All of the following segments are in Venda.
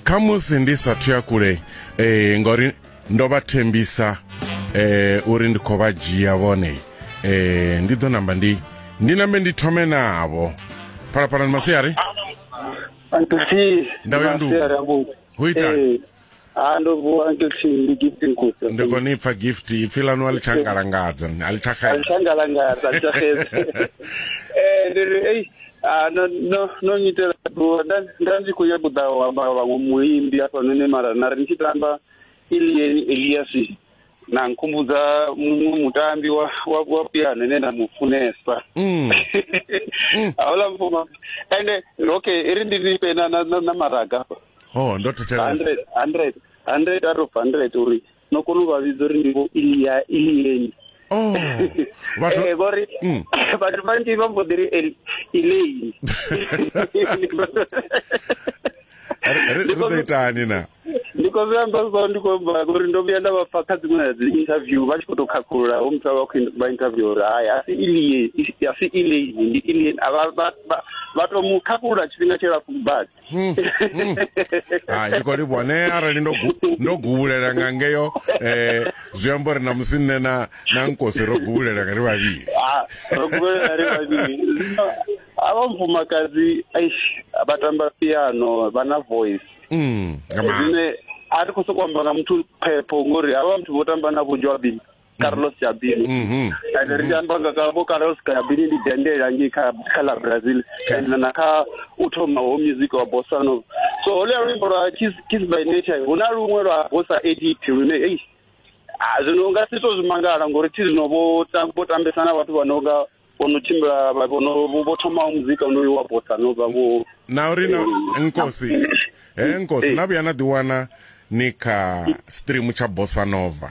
kha musi ndi sa thuya kule eh ngori ndo vha thembisa eh uri ndi khou vha dzhia vhone eh ndi ḓo namba ndi ndi nambe ndi thome navho phalaphalani masiari ndavhuya ndu ho ita ha ndo vuwa uncle t ndi gift nkusa ndi khou ni pfa gift ipfi ḽanu a ḽi tsha ngalangadza a ḽi tsha xedza alithangalangasa alithahedza um ndi ri ei ah, no- no- no nyitela bua nda nda ndi khou ya kuḓa u amba vhaṅwe muimbi hafhanoni mara na ri ni tshi tamba elieni eliasi na nkhumbudza muṅwe mutambi wa wa wa piano ine nda mu funesa Mm. hauḽa mfuma ende okay i ri ndi nifhe na na- na- na maraga hafha ho ndo thetshelesa 100 100 out of 100 uri no kona u vha vhidza uri ndi vho ilia ilieni oh vhathu Eh, ngori Mm. vhathu vhanzhi vha mbo ḓi ri el- ileini ri- ri ri ḓo itani na ndi khou zwi amba so ndi khou amba ngori ndo vhuya nda vha pfa kha dziṅwe na dzi interview vha tshi khou tou khakhulula ho muthu a vha khou in- vha interview uri hai a si ilie a si ileini ndi ilien a vha- vha- vha- vha tou mu khakhulula tshifhinga tshilapfu badi Hmm, hmm. hai ndi khou livhuwa ne arali ndo ndo guvulela nga ngeyo eh zwi amba uri na musi nne na na nkosi ro guvulela nga ri vhavhili ah, ro guvulela ri vhavhili ava mufumakadzi aish vha tamba piano vha na voice mm, zwine a ri khou sokou amba na muthu phepho ngori havha muthu vho tamba na vho joabini carlos yabili Mhm. and ri tshi amba nga ka vho carlos yabili ndi dendela ngei kha kha la brazil and na kha u thoma ho music wa bossa nova so holuya luimbo lwa kiss Kiss by nature hu na luṅwe lwa bossa edit lune ei ah, zwino u nga si to zwi mangala ngori thi zwino vho tam- vho tambesa na vhathu vha no nga vho no tshimbila vha- vho no- vho- vho thomaho muzika onoyu wa bossa nova vho na uri na nkosi he nkosi na vhuya na ḓiwana ni kha stream tsha bossa nova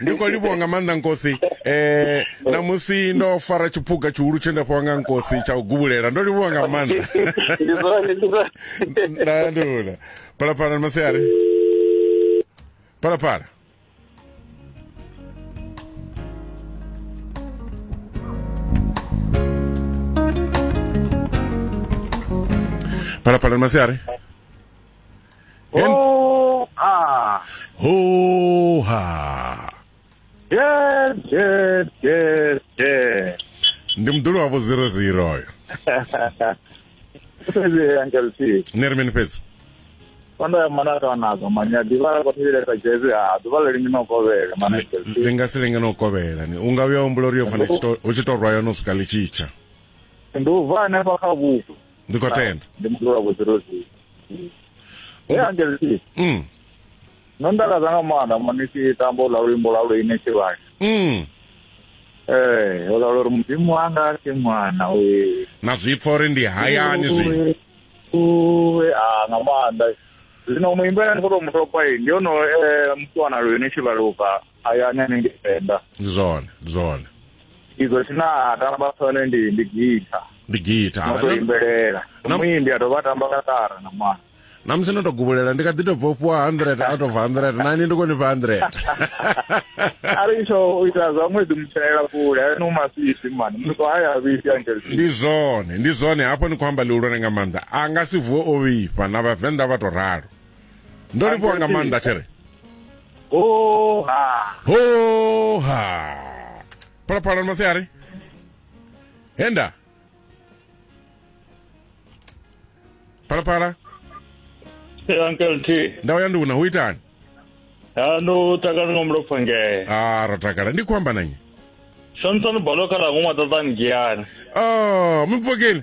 ndi khou livhuwa nga maanḓa nkosi eh na musi ndo fara tshiphuga tshihulu tshe nda fhiwa nga nkosi tsha u gubulela ndo livhuwa nga maanḓa ndi zwone ndi zwone nda ndula phalaphala ni masiari phalaphala phalaphala ni masiari Ho ha. Ho ha. Yes, yes, yes, yes. Ndi mdulu wavho 00 oyo. Sisi Uncle T. Ni ri mini fhedzi? Kwanda ya mwana ka nazo manya divara kwa tibile ka jezi ha divara lingi no kovela mana Uncle T. Ri nga si lenge no kovhela ni. U nga vhuya humbula uri yo fana u tshi to- u tshi to rwa yo no swika ḽitshitsha. Ndi u vha hanefha kha vhupo. ndi khou tenda ndi muthu wa vhudzirozi he angelisi mm. no ndakaza nga maanḓa mani tshi tamba ula luimbo lwa luine tshivhani mm. ee ula luri mudzimu wanga si mwana uye na zwipfa uri ndi hayani zwi uwe a nga maanḓa zwino muimbi ane ndi khou tou mutopa ndi ono mutwana luine tshivhaluka hayani hanengei venḓa ndi zwone ndi zwone izwo tshine a tamba tshone ndi ndi gita ndi gita no to imbelela muimbi a dovha a tamba katara na mwana na musi no to gubulela ndi kha ḓi to bva u fhiwa hundred out of hundred nani ndi koni fha hundred ari tsho u ita zwa ṅwedzi mutshela kule ayo ni umasisi mani muthu to haya vhisi angel ndi zwone ndi zwone hafho ni khou amba lihulwane nga maanḓa a nga si vuwe o vhifha na vhavenḓa vha to ralo ndo livhuwa nga maanḓa tshere hoha hoha phalaphala masiari henda phalaphala uncle t ndawo ya nduna hu itani ndo takala nga mulopfa ngee a ah, ro takala ndi khou amba nanye santsano balo kha lango mwatatani giani o ah, mupfokeni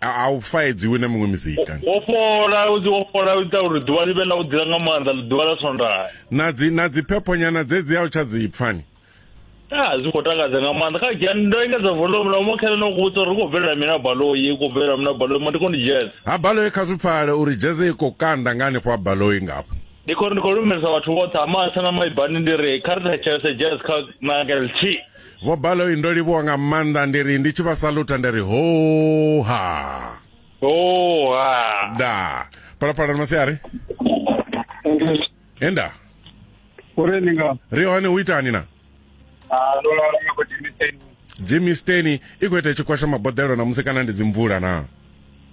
a u faedziwi na miṅwe mizika wo fhola u wo fhola u ita uri ḓuvha ḽi vhe ḽa u dzila nga maanḓa ḓuvha ḽa swondaha na dzi na dzi phephonyana dze dzi a u tsha dzi pfani a zwi khou takadza nga maanḓa kha dzhia ndo engedza volume na uma khele no ku vhudza uri khou bvelela mina baloi khou bvelela mina baloi ma ndi khou ndi jazz ha baloi kha zwi pfale uri jazz i khou kanda nga hanefho ha baloi ngafho ndi khou ndi khou lumelisa vhathu vhoṱhe ha matsha na maibani ndi ri kha ri thetshelese jazz kha na ngeltshi Vho Baloyi ndo livhuwa nga maanḓa ndi ri ndi tshi vha saluta ndi ri hoha. Hoha. Da. Phalaphala na masiari. Enda. Uri ni nga. Ri hone u itani na? Ah, ndo lala nga Jimmy Steni. Jimmy Steni i khou ita tshikwasha maboḓelo na musi kana ndi dzimvula na?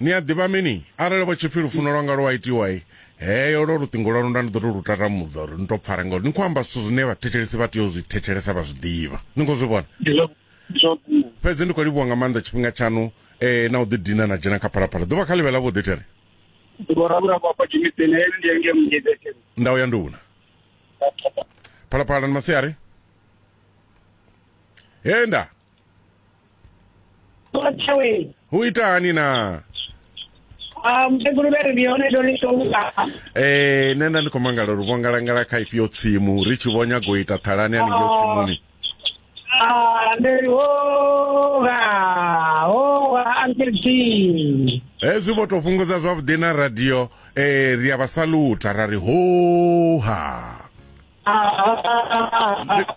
ni a ḓivha mini arali vha tshipfi lufuno lwanga lwa itiwa i heyo lwo luṱingo lwanu nda ni ḓo to lu tatamudza uri ni to pfare ngauri ni khou amba zwithu zwine vhathetshelesi vha tea u zwi thetshelesa vha zwi ḓivha ni khou zwi vhona fhedzi ndi khou livhuwa nga maanḓa tshifhinga tshaṋu um eh, na u ḓidina na dzhena kha phalaphala ḓuvha kha ḽivhe ḽa vhuḓi tere nda u ya nduna phalaphala ni masiari he nda Ṱuwa tshaweni. Hu itani na? Ah, mukegulu vhe ri ndi hone ndo ḽi ṱola. Eh, nṋe nda ndi khou mangala uri vhongalangala kha ifhio tsimu ri tshi vho nyaga u ita ṱhalani haningeo tsimuni. Ah, ndi ri hoga, hoga Uncle T. Hezwi vho tou fhungudza zwavhuḓi na radio eh ri a vha salutha ra ri hoha. Ah, ah, ah, ah, ah.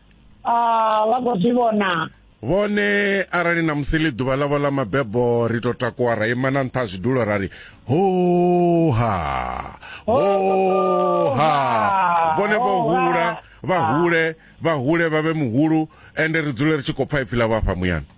Ah, vha khou zwi vhona vhone arali na musi ḽi ḓuvha ḽavho ḽa mabebo ri to takuwa ra ima na nṱha zwidulo ra ri hoha hoha vhone vho hula vha hule vha hule vha vhe muhulu ende ri dzule ri tshi khou pfa ipfi ḽa vhafha muyani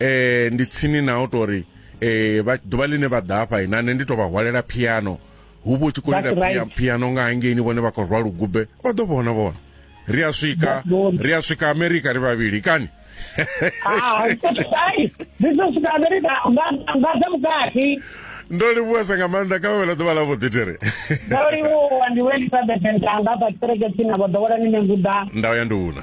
eh ndi tsini na u tori eh vha ḓuvha ḽine vha ḓa hafha ina nṋe ndi tou vha hwalela piano hu vho tshi khou lila right. piano nga hangeini vhone vha khou rwa lugube vha ḓo vhona vhona ri a swika ri a swika amerika ri vhavhili kani ah, ndo livhuwesa nga maanḓa kha vhavhela ḓuvha ḽa vhuḓi tere ndo livhuwa ndi wendisa bethentanga vha kereke tsina vha ḓowela ni nenguda nda ya ndi una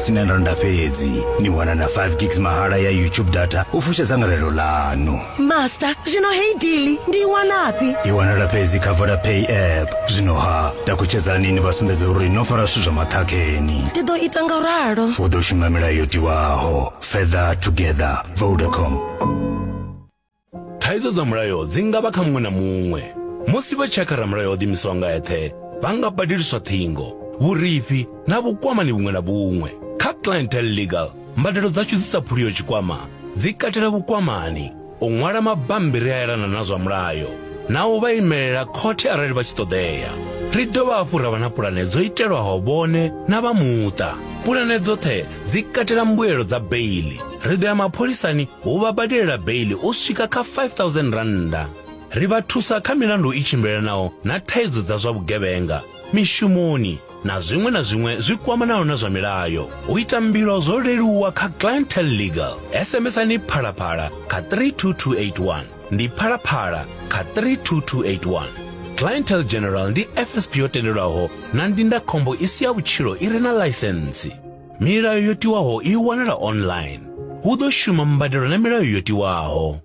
sina randa fhedzi ni wana na 5 gigs mahala ya youtube data u fusha dzangalelo ḽanu master zwino hei dili ndi i wanafhi i wanala fhedzi kha vodapay app zwino ha takutshedzani ni vha sumbedza uri no fara zwithu zwa maṱhakheni ndi ḓo ita nga ralo u ḓo shuma milayo yo tiwaho further together vodacom Thaidzo dza mulayo dzi nga vha kha muṅwe na muṅwe. Musi vha tshakha ramulayo o ḓimisaho nga eṱhe, vha nga badeliswa ṱhingo, vhurifhi na vhukwamani vhuṅwe na vhuṅwe. Kha Clientele Legal, mbadelo dzashu dzi sa phuliho tshikwama dzi katela vhukwamani, u ṅwala mabammbiri a elana na zwa mulayo na u vha imelela khothe arali vha tshi ṱoḓea. Ri dovha hafhu ra vha na pulane dzo itelwaho vhone na vha muṱa. Pulane dzoṱhe dzi katela mbuelo dza beiḽi. ri ḓo ya mapholisani hu vha badelela beili u swika kha 5000 rannda ri vha thusa kha milandu i tshimbilelanaho na thaidzo dza zwa vhugevhenga mishumoni na zwiṅwe na zwiṅwe zwi kwamanaho na zwa milayo u ita mbilo zwo leluwa kha clientel legal sms-ani phalaphala kha 32281 ndi phalaphala kha 32281 clientel general ndi fsp yo tendelwaho na ndindakhombo i si ya vhutshilo i re na ḽaisentsi Milayo yo tiwaho i wanala online. Hu ḓo shuma mbadelo na milayo yo tiwaho.